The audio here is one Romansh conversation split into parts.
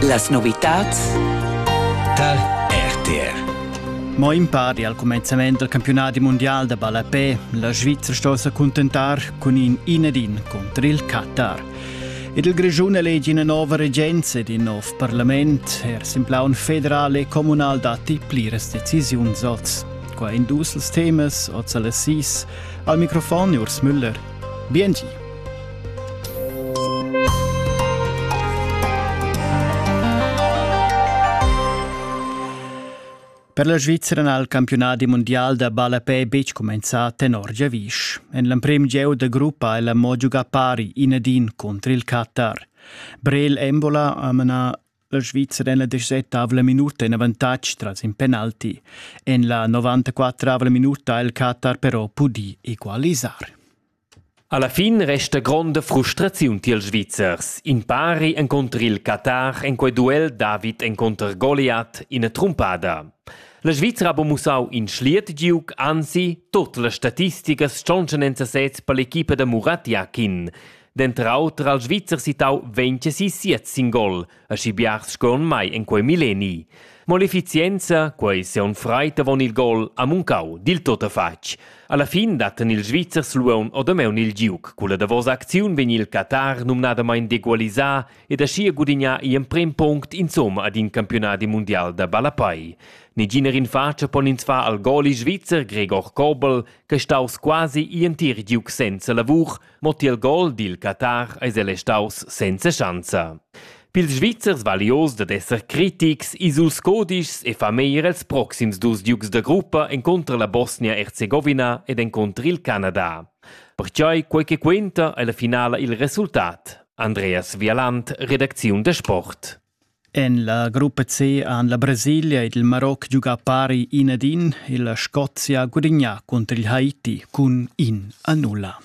Las novitads tar RTR. Mo impari al cumenzament dal campionadi mundial da ballapè, la Svizra sto sa cuntentar cun in in ed in cunter il Qatar. Ed il Grischun elegi ina nova regenza ed in nov parlament. Er sin plaun federal e communal datti pliras decisiuns oz. Qua in dus temas, oz alle sis. Al microfon Urs Müller. Biengi. Per la Svizra n'ha il campiunadi mundial da ballapè betg cumenzà tenor giavisch. En l'emprim gieu da gruppa è la mo giugà pari inedin contr il Qatar. Brel Embola ha manà la Svizra en la 17 minuta in avantatg tras in penalti. En la 94 minuta ha il Qatar però pudì equalisar. Alla fin resta gronda frustraziun tiels Svizzers. In pari encunter il Qatar en quei duel David encunter Goliath ina trumpada. La Svizra ha buca mussau in schliet giug, anzi, tut las statisticas stontschan en sesez per l'equipa da Murat Yakin. Denter auter ha il Svizzer sittau 26 sin gol, Aschi biars scon mai en quei milleni. Mo l'efficienza, quei seun freit avon il gol, ha muncau dil tuttafatg. Alla fin datten ils Svizzers Luon odameun il giuc. Culla davosa acziun vegn il Qatar numnadamain degualisà ed aschia gudignà i emprem punct insomma ad in campionadi mundial da ballapai. Neginer in facia pon ins far al goli svizzer Gregor Kobel, che staus quasi i entir giuc senza lavur, Mo tiel gol dil Qatar eis el restaus senza schanza. Pils Svizzers valios dad esser critics, ils dus codischs e fa meir els proxims dus ducs da gruppa encontrer la Bosnia-Herzegovina ed encontrer il Canada. Pertgei quei che quenta ei la finala il resultat. Andreas Vialant, redacziun da sport. En la gruppa C han la Brasilia ed il Maroc giugà pari in ad in e la Scozia gudagnà cunter il Haiti cun in a nulla.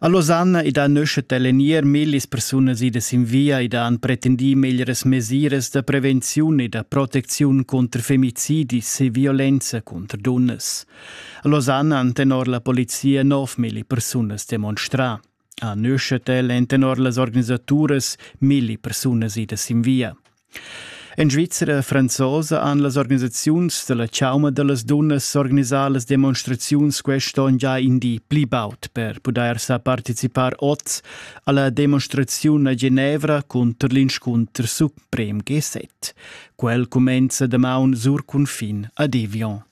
A Losanna ed a Neuchâtel èn ier millis persunas idas sin via ed han pretendì meglieras mesiras da prevenziun e da protecziun cunter femicidis e violenza cunter dunnas. A Losanna han tenor la polizia nov milli persunas demonstrà. Ha neu schet el en tenor las organisaturas milli persunas idas sin via. En Svizra franzosa han las organisaziuns dalla chauma dallas dunnas organisà las demonstraziuns quest'onn già in di pli baud per pudair sa participar oz alla demonstraziun a Genevra cunter l'inscunter suprem G7. Quel cumenza damaun sur cunfin a Devion.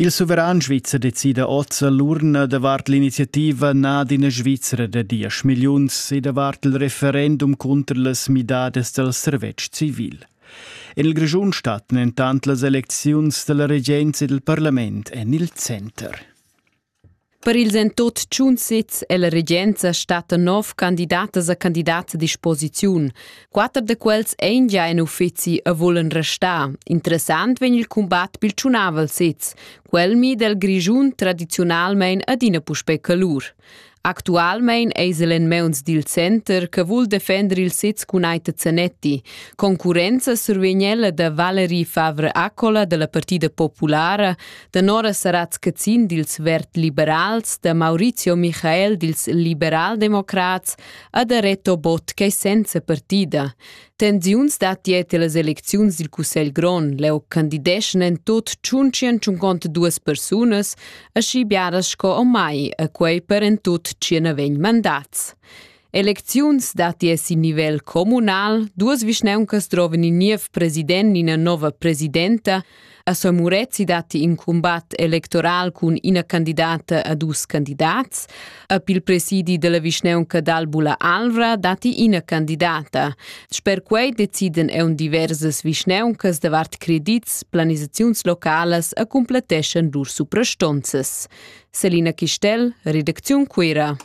Il suveran svizzer decida oz l'urna davart l'iniziativa na d'ina Svizra da diesch milliuns e davart il referendum cunter las midadas dal servetsch civil. En il Grischun stattan entant las elecziuns da la regenza e dal parlament en il center. Per ils en tot tschun sezs è la regenza stata nov candidatas a candidats a disposiziun. Quatter da quels ein gia en uffizi e volen restar. Interessant vegn il combat pil tschunavel sez, quel mi del Grischun tradizionalmein adina puspei calur. Actualmein eis el en meuns dil center che vul defender il sez cun Aita Zanetti. Concurenza survegn ella da Valerie Favre Accola della Partida Populara Tenora sarà tschecin dils verd-liberals da Maurizio Michael dils liberaldemocrats a da Reto Bott ch'ei senza partida. Tensiuns datti tier las elecziuns dil Cussegl Grond. Leu candideschan en tut tschuncien tschunconta duas persunas, aschi biaras sco o mai, a quei per en tut tschien vegn mandats. Elecziuns datti er sin nivel communal. Duas vischnauncas droven in niev president, ina nova presidenta. A Sor Murezi datti in combat electoral cun ina candidata a dus candidats. A il presidi della vischnaunca d'Albula Alvra datti ina candidata. Sper quei deciden eun diversas vischnauncas davart credits, planisaziuns localas a cumpletteschan lur suprastonzas. Selina Chistel, Redaktion Cuira.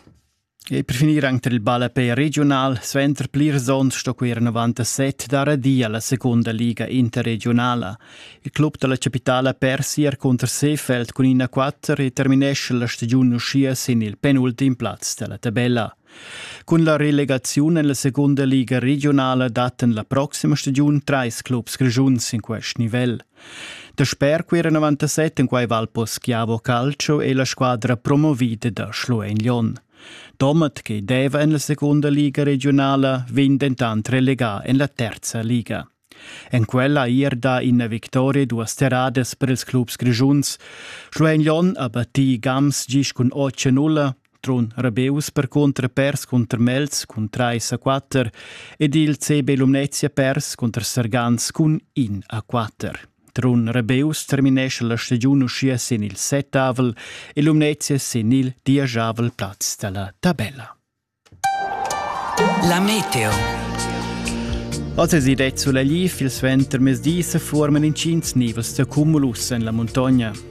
E per finir anc tar il ballapei regiunal suenter plirs onns sto quei era 97 dar di alla secunda liga interregiunala. Il club dalla capitala persi er contro Seefeld cun ina 4 e terminesce la stagiun uschia sin il penultim plaz della tabella. Cun la relegaziun en la secunda liga regionala datten la proxima stagiun treis clubs grigiuns in quest nivel. Dasper quei 97 en quei val poschiavo calcio e la squadra promovida da Schluein Lyon. Domat, che deva en la seconda liga regionala, vegn dentant relegà en la terza liga. En quella ir da ina victoria duas terradas per ils clubs grischuns. Schluein Lyon ha battì Gams gis cun 8-0, Trun Rabeus percunter pers cunter Melz cun 3 a 4 ed il CB Lumnezia pers cunter Sergans cun 1 a 4. Trun Rabeus terminesce la stagiun uschia sin il settavel e Lumnezia sin il dieschavel plaz dalla tabella. La meteo. Oz es id sulla glief il suenter mes dis forman in cins nivels da cumulus en la muntogna.